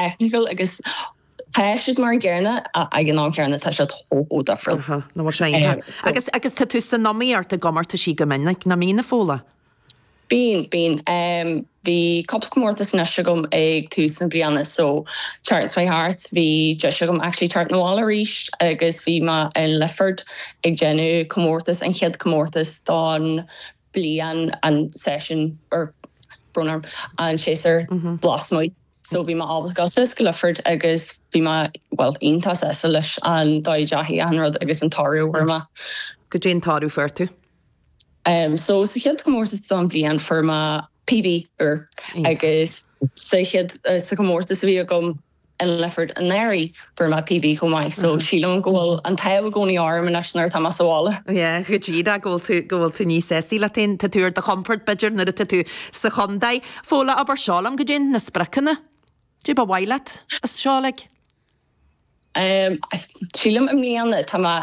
technical agus tá siad mar an gcéanna ag an am céanna tá siad chomh difriúil. Nó mar sin. Tá. Agus tá tú san iomaíocht i gcomórtaisí go minic, na míonna, Fódhla? Bíonn, bíonn. Bhí cúpla comórtas anois agam ag tús na bliana so Tír Chonaill Harriers, bhí deis agam actually teacht 'na bhaile arís agus bhí mé i Lifford ag déanamh comórtas, an chéad comórtas don bliain, an session ó brón orm, an séasúr lasmuigh. so bhí mé ábalta gabháil síos go Leifear agus bhí mé, bhuel, iontach sásta leis an dóigh a ndeachaigh an rud agus an toradh a fuair mé. Goidé an toradh a fuair tú? Em, so sa chéad chomórtas don bhliain, fuair mé PB uair agus sa chéad, sa chomórtas a bhí agam i Leifear anuraidh, Fuair mé PB chomh maith. So sílim go bhfuil an t-ádh i gcónaí orm anois nuair atá mé sa bhaile. Yeah, goidé, go bhfuil tú níos sásta leat féin, tá tú ar do chompord b'fhéidir nuair atá tú sa chontae. Fódhla, abair seo liom, goidé iad na spriocanna? Goidé ba mhaith leat as seo ar aghaidh? Umm, sílim i mbliana tá mé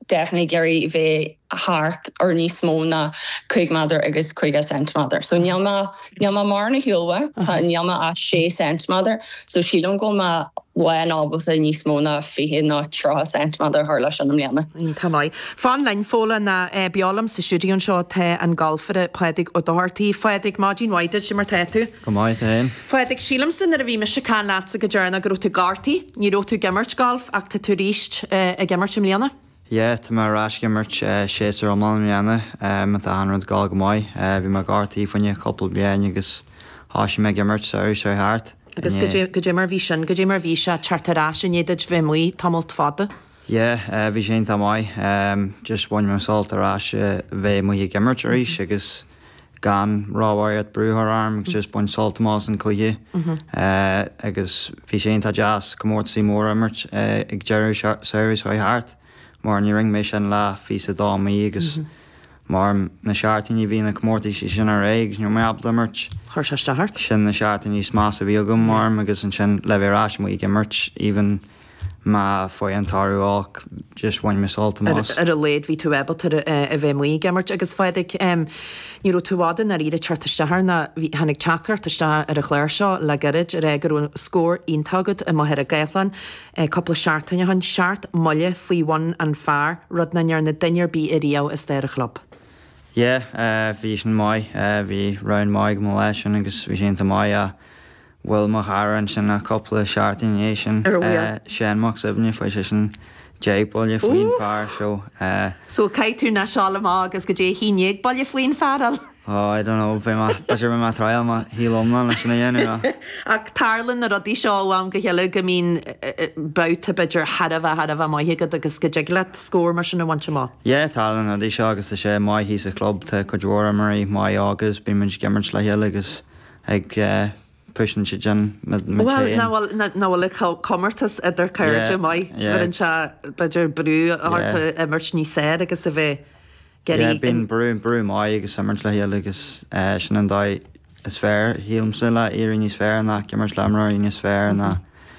definitely ag iarraidh bheith thart ar níos mó ná cúig méadar agus caoga ceintiméadar. So níl mé, níl mé mar ní hea, níl mé ach, tá, níl mé ach sé ceintiméadar, so sílim go mbeidh mé ábalta níos mó ná fiche nó tríocha ceintiméadar a chur leis sin i mbliana. Iontach maith. Fan linn, Fódhla, nó beo liom sa studio anseo tá an galfaire Pádraig Ó Dochartaigh. Phádraig, maidin mhaith duit, cad é mar tá tú. Go maith, tú fhéin. Phádraig, sílimse nuair a bhí mise ag caint leatsa go deireanach go raibh tú gortaithe, ní raibh tú ag imirt galf ach tá tú ar ais ag imirt i mbliana? Yeah, tá mé ar ais ag imirt séasúr iomlán i mbliana. So tá achan rud ag gabháil go maith, bhí mé gortaithe fá choinne cúpla bliain agus thoisigh mé ag imirt samhradh seo thart. Agus yeah. Agus goidé mar bhí sin? Goidé mar bhí sé teacht ar ais i ndiaidh duit bheith amuigh tamalt fada? Yeah, bhí sé iontach maith. Just bhain mé an-sult as a bheith amuigh ag imirt arís agus. gan róbharraíocht brú a chur orm agus just bain sult amach as an gcluiche agus bhí sé iontach deas comórtaisí móra a imirt ag deireadh samhraidh seo thart mar ní rinne mé sin le fiche's a dó mí agus mar na seachtainí a bhí na comórtaisí sin ar aghaidh agus ní raibh mé ábalta imirt. Chuir sé isteach ort. Sin na seachtainí is measa a bhí agam mar am agus ansin le bheith ar ais amuigh ag imirt even má fhaigheann toradh olc just bhain mé sult amach. ar a laghad bhí tú ábalta a bheith amuigh ag imirt agus a Phádraig ní raibh tú i bhfad i ndáiríre ag teacht isteach ar na, bhí, tháinig teachtaireacht isteach ar an chlár seo le gairid a rá go raibh scór iontach agat i Machaire Gathlán cúpla seachtaine ó shin, seacht mbuille faoi bhun an phar, rud nach ndearna duine ar bith i riamh i stair an chlub. Yeah, bhí sin maith, bhí round maith agam an lá sin agus bhí sé iontach maith ach bhuail mo chara ansin é cúpla seachtain ina dhiaidh sin. Ar a bhuille. Seán Mac Suibhne, fuair sé sin deich buille faoin phar so. So caithfidh tú anois a ghabháil amach agus go dtí haon déag buille faoin phar eile. Oh, I don't know, beidh mé, tá sé, beidh mé ag triail mo shaol iomlán le sin a dhéanamh ach. Ach tarlann na rudaí seo ó am go chéile, go mbíonn babhta b'fhéidir thar a bheith, thar a bheith maith agat agus go dtig leat scór mar sin a bhaint amach. Yeah, tarlann na rudaí seo agus tá sé maith thíos sa chlub, tá cuid mhór imreoirí maith óg agus bímid ag imirt le chéile agus ag pushing iad sin muid muid féin. Bhuel, ná bhuel, ná bhuel le comórtas idir cairde maith, bhfuil anseo b'fhéidir brú orthu imirt níos fearr agus a bheith ag iarraidh. Bíonn brú, brú maith agus imirt le chéile agus sin an dóigh is fearr, shílimse, le éirí níos fearr ná ag imirt le imreoirí níos fearr ná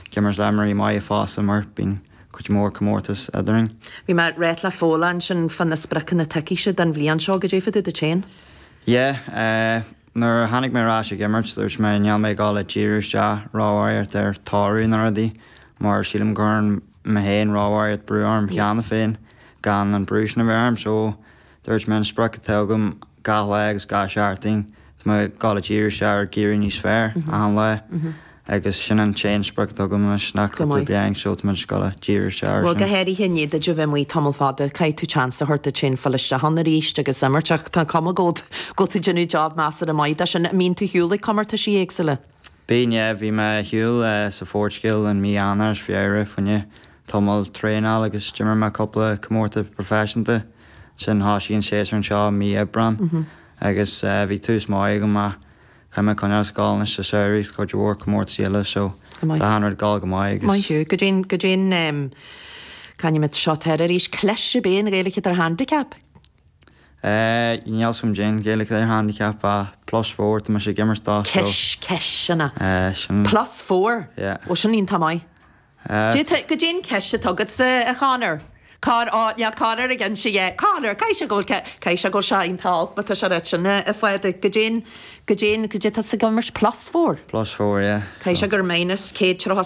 ag imirt le imreoirí maith agus mar, bíonn cuid mhór comórtas eadrainn. Bhí mé réit le foghlaim sin fá na spriocanna atá agatsa don bhliain seo goidé fadó duit féin. Yeah, Nuair a tháinig mé ar ais ag imirt, dúirt mé, níl mé ag gabháil a díriú isteach róbharraíocht ar toradh na rudaí, mar sílim go gcuireann mé féin róbharraíocht brú orm cheana féin gan an brú sin a bheith orm. So, dúirt mé, an sprioc atá agam gach lá agus gach seachtain, tá mé ag gabháil a díriú isteach ar éirí níos fearr achan lá. agus sin an t-aon sprioc atá agam anois, nach cúpla bliain so tá mé just ag gabháil a díriú isteach air sin. Bhuel, go háirithe i ndiaidh duit a bheith amuigh tamall fada, caithfidh tú seans a thabhairt duit féin filleadh isteach ann arís agus imirt, ach tá an chuma air go bhfuil tú ag déanamh job measartha maith de sin. An mbíonn tú ag siúl ag comórtaisí éagsúla? Bíonn, yeah, bhí mé ag siúl sa Phoirtigéil in mí Eanáir is Feabhra, faoi choinne tamall, traenáil agus d'imir mé cúpla comórtas proifisiúnta, ansin thoisigh an séasúr anseo mí Aibreán agus bhí tús maith agam, ach. Cuimhnigh conas gabháil anois sa samhradh cuid mhór comórtas eile so tá achan rud ag gabháil go maith agus. Maith thú. Goidé an caithfimid seo teir arís. Cleas ar bith an Ghaeilge atá ar handicap? Ehh níl a fhios agam goidé an Ghaeilge atá ar handicap ach plus four atá mise ag imirt dá so. Cis ceisteanna. Eh sin. Plus four? Yeah. Ó sin iontach maith. D'fhéadfadh goidé an chis atá agatsa, a Chonor. Cár fhág Leath Conor ag inse é? Conor, caithfidh sé go bhfuil, caithfidh sé go bhfuil sé iontach olc, má tá sé ag ráit sin, a Phádraig. Goidé, goidé an, goidé atá tusa ag imirt plus four? Plus four, yeah. Caithfidh sé gur minus céad trátha.